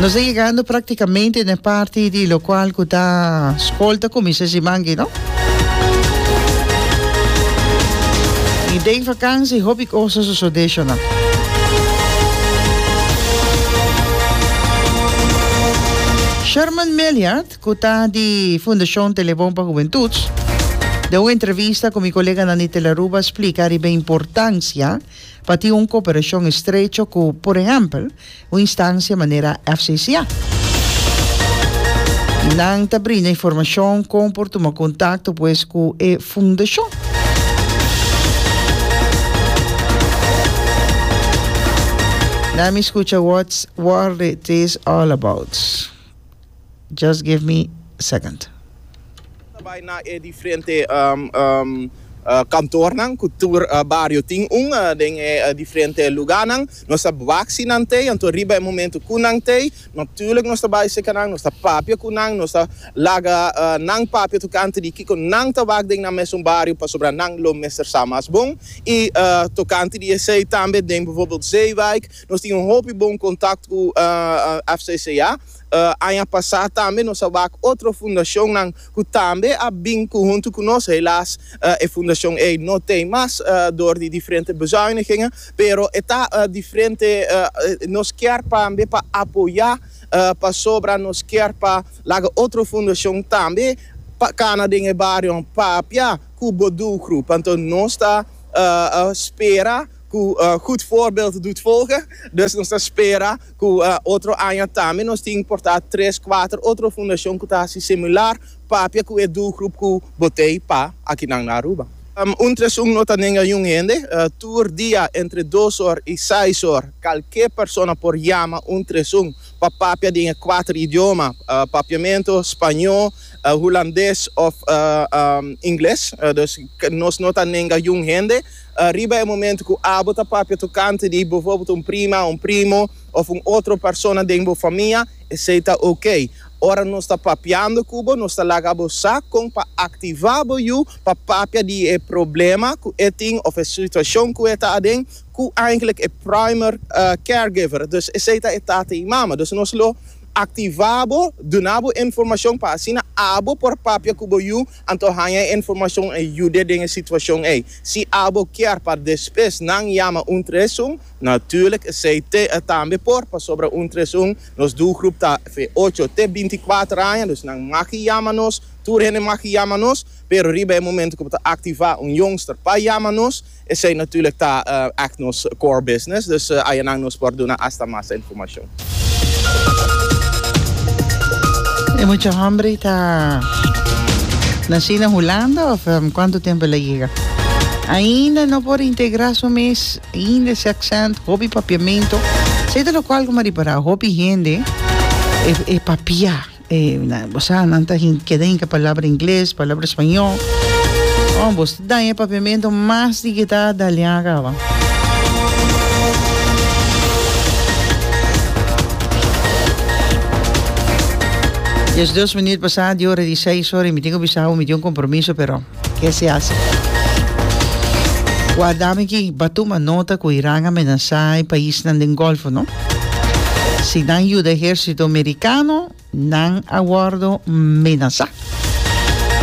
Nos a yegando praktikamente na e parti di lokual ku ta skol ta kuminsá simanki, no? I den vakansi hopi kos a sosodé shona. Sherman Meliart, ku ta di Fundashon Telebon pa Hubentud, den un entrevista ku mi koleganan di Telaruba, splika riba e importansia, pa tin un kooperashon estrecho ku, por ehèmpel, un instansia manera FCCA. Nan ta brinda informashon kon por tuma kontakto pues ku e fundashon. Nan mi skucha wòtz War It Is All About. Just give me second. Nan ta bai na e diferente kantornan ku tur bario tin un, den e diferente luganan. Nos ta wak si nan t'ei, anto riba e momentu ku nan t'ei, natulik nos ta bai seka nan, nos ta papia ku nan, nos ta laga nan papia tokante di kiko nan ta wak den nan mesun bario pasobra nan lo mester sa mas bon. I tokante di esei tambe den bivorbel Zeewijk. Nos tin un hopi bon kontakto ku FCCA. Aña pasá tambe nos a wak otro fundashonnan ku tambe a bin ku huntu ku nos. Helas e fundashon ei no t'ei mas dor di diferente bezuinigengen, pero e ta diferente. Nos kier tambe pa apoyá pasobra nos kier pa laga otro fundashon tambe pa kana den e barionan papia ku bo dulgrup. Anto nos ta spera. ku gud fòrbèld dut folga, dus nos ta spera ku otro aña tambe nos tin importá tres, kuater otro fundashon ku ta hasi similar, papia ku e dulgrup ku bo tei pa akinan na Aruba. Un tres un no ta nenga yun hende, tur dia entre dos or i seis or kalke persona por yama un tres un pa papia den e kuater idioma, papiamentu, spañó, hulandes òf ingles, dus nos no ta nenga yun hende. Riba e momento cu abo ta papia tocante di bijvoorbeeld un prima, un primo of un otro persona den bo famia, esey ta ok. Ora nos ta papiando cu bo, nos ta laga bo sa con pa activa bo yu pa papia di e problema cu e tin of e situacion cu e ta aden cu eigenlijk e primer caregiver, dus esey ta e tata y mama. Dus nos lo activa bo, duna bo informacion pa asina abo por papia cu bo yu. Anto haña e informashon ei yude den e situashon ei. Si abo kier pa despues nan yama un tres un, natuerlijk esei te a tambe por, pasobra un tres un nos doelgroep ta fe ocho te binti kuater aña, dus nan maki yama nos, tur hende maki yama nos, pero riba e momento ku bo ta aktivá un youngster pa yama nos, Esei natuurlijk ta èk nos core business, dus ayanan nos por duna asta mas informashon. E mucha hòmbri ta nashí na Hulanda òf kuantu tempu el a yega? Ainda no por integrá su mes, ainda e sèksènt, hopi papiamentu. Esei ta lokual ku Maripará, hopi hende e papiá. Bo sa, nan ta keda hinka palabra ingles, palabra spañó. Oh, bo ta daña e papiamento mas di kita a daliá caba. Yes dos minuut pasá di ora di seis ora y mi tin cu bisa bo mi tin un compromiso pero. Ke si hasi? Wak dame aki, Ba tuma nota ku Iran a menasá e paisnan den Gòlfo, no? Si nan yuda ehérsito merikano, nan a wòrdu menasá.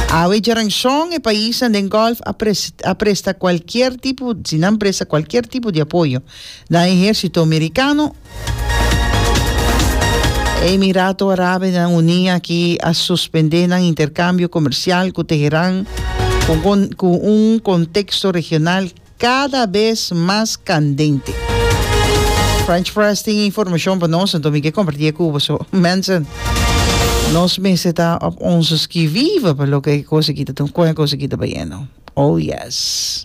Awe djaran shon e paisnan den Gòlf a a presta kualkier tipo, si nan presta kualkier tipo di apoyo na ehérsito merikano, Emirato Arabenan Uní aki a suspendé nan interkambio komersial ku Teheran ku un konteksto regional kada bes mas kandente. French Press tin informashon pa nos, anto mi ke kompartí e ku boso. Mensen, nos mester ta op ons skivive pa loke e kos aki ta tuma, kon e kos aki ta bayendo. Oh yes.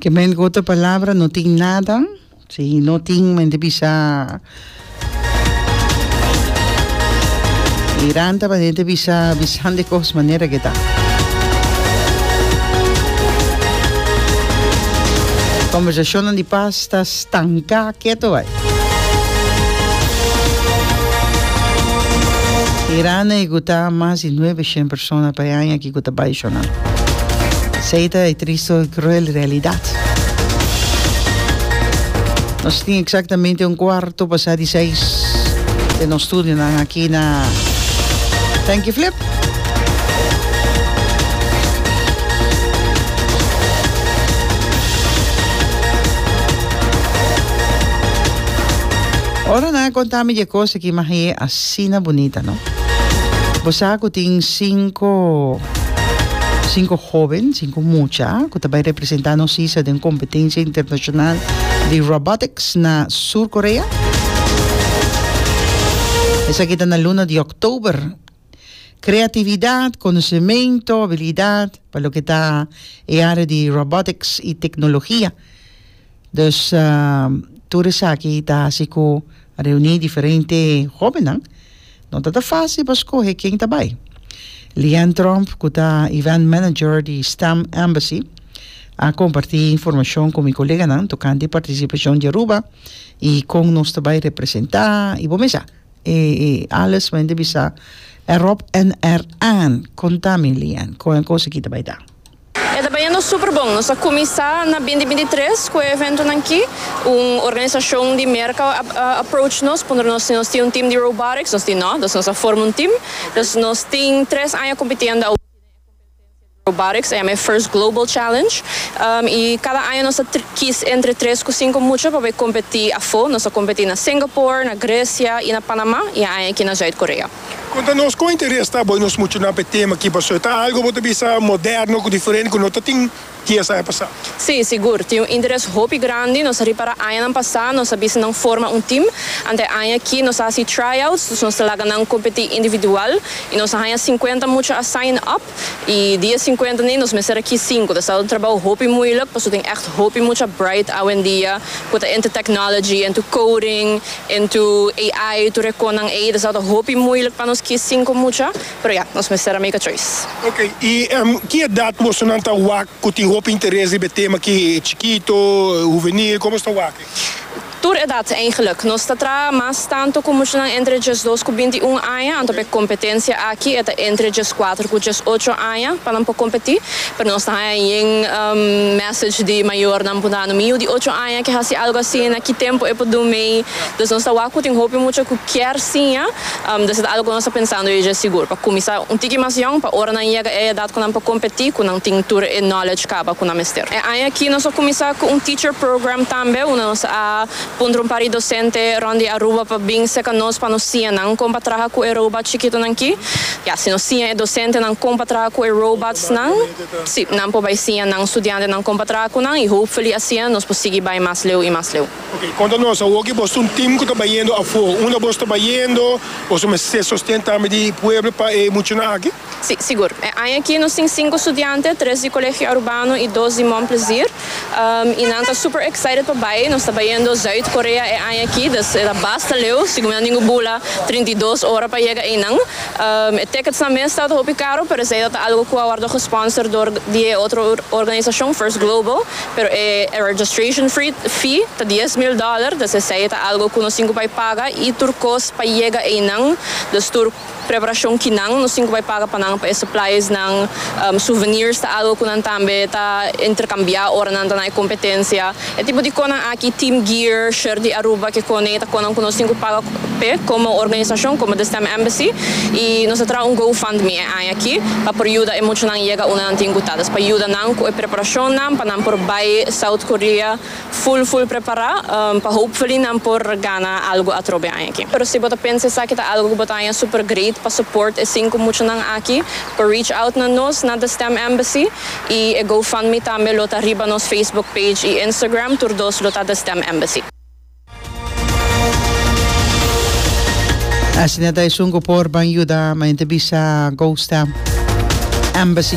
Ke men ku otro palabra no tin nada, si no tin men di bisa miranta pa hende bisa bisan di kos manera ke ta. Kombersashonnan di pas ta stanka keto bai. Mirana e guta mas di nuebe shen persona pa e aña. y cu ta bay shona. Esey ta e tristo y cruel realidad. Nos tin exactamente un cuarto pasa di seis den nos studionan aki na Thank You Flip. Ora nan a conta mi dje cos aki, m'a heye as. Asina bunita no. Bo sa cu tin cinco cinco hoben, cinco mucha, cu ta bay representa nos sisa den competencia internacional di robotics na Sur Corea? Esaki ta na luna di October. Creatividad, conocemento, habilidad pa loke ta e area di robotics y tecnologia. Dus tur esaki ta hasi ku reuní diferente hóbennan. No tabata fásil pa skohe ken ta bai. Leanne Tromp, ku ta event manager di Stem Embassy, a kompartí informashon ku mi koleganan tokante e partisipashon di Aruba i kon nos ta bai representá i bo mesa. E alles mi hende bisa erop en eraan. Kontami, Leanne, kon e kos akí ta bai ta? E ta bañando super bon. Nos a cuminsa na binti binti tres cu e eventonan ki. Un organisacion di Merca a approach nos puntra nos si nos tin un team di robotics. Nos tin no, dus nos a forma un team. Dus nos tin tres aña cumpitiendo awo den e competencia di robotics, a yama e First Global Challenge. Y cada aña nos a kis entre tres cu cinco mucha pa bai competi afo. Nos a competi na Singapore, na Grecia y na Panama y e aña aki na Zuid-Korea. Konta nos kon interes ta bo i nos muchanan pa e tema aki paso e ta algu bo ta bisa moderno ku diferente ku no ta tin dies aña pasá. Sí, sigur, tin un interes hopi grandi. Nos a ripará añanan pasá nos a bisa nan forma un tim. Anta e aña aki nos a hasi tryouts, dus nos ta laga nan kompetí individual i nos a haña sinkuenta mucha a sign up. I di e sinkuenta nei nos mester a kies sinku. Ta stado un trabou hopi muilik paso tin ègt hopi mucha bright awendia ku ta into technology, into coding En tu AI, tu recon nan ey, ta sata hopi moeilijk pa nos kies cinco mucha, pero ya, nos mester a make a choice. Ok, y ki edad mosonan ta wak cu tin hopi interes riba e tema aki? Chikito? Huvenil? Como nos ta wak ey? Tur edad eigenlijk. Nos ta traha mas tanto cu muchanan entre diesdos cu binti un aña, anto pa e competencia aki e ta entre diescuater cu diesocho aña pa nan por competi, pero nos ta haya yen meta. Sech di mayornan por na anu miu di ocho aña ke hasi algu asina, ki tempu e por dun mei? Dus nos ta wak ku tin hopi mucha ku kier siña, des ta algu ku nos ta pensando e dje sigur. Pa kuminsá un tiki mas yòn, pa ora nan yega e edat ku nan por kompetí, ku nan tin tur e knowledge kaba ku nan mester. E aña akí nos a kuminsá ku un teacher program tambe, unda nos a puntra un par di dosente rònt di Aruba pa bin serka nos pa nos siña nan kon pa traha ku e robòt chikitu nan ki. Ya, si nos siña e dosentenan kon pa traha ku e robotsnan. Sí, nan por bai siña nan studiantenan kon pa traha ku nan i hopefully asin nos por sigui bai mas leu i mas leu. Ok, konta nos awoki bos ta un tim ku ta bayendo afó. Unda bos ta bayendo? Boso mester sosten tambe di pueblo pa e muchanan aki? Sí, sigur. E aña aki nos tin sinku studiante, tres di Colegio Arubano i dos di Mon Plezier. y nan ta super excited pa bay, nos ta bayendo Zuid Korea e aña aki, dus e ta basta leu, segun mi a dingu bula trinta i dos ora pa yega eynan, e tickets nan mes ta ta hopi caro, pero esey ta ta algo cu a wordo gesponsor door di e otro organisacion, First Global, pero e registration fee ta dies mil dollar, dus esey ta algo cu nos tin cu bay paga, y tur cos pa yega eynan, dus tur. Preparashon kinan nos tin ku bai paga pa nan pa e suppliesnan, souvenirs ta algu ku nan tambe ta interkambiá ora nan ta na e kompetensia. E tipo di konan aki, team gear, shirt di Aruba, kekon ei ta konan ku nos tin ku paga p'e komo organisashon, komo The Stem Embassy, i nos a traha un GoFundMe e aña aki pa por yuda e muchanan yega unda nan tin ku ta, ta es pa yuda nan ku e preparashonnan pa nan por bai South Korea. Full full prepará pa hopefully nan por gana algo atrobe aña aki. Pero si bo ta pensa esaki ta algo ku bo ta haña super great pa support e sinku muchanan aki, por reach out na nos na The Stem Embassy i e GoFundMe tambe lo ta riba nos Facebook page i Instagram, tur dos lo ta The Stem Embassy. Asina ta esun ku por ban yuda, manjen ta bisa GoStem Embassy.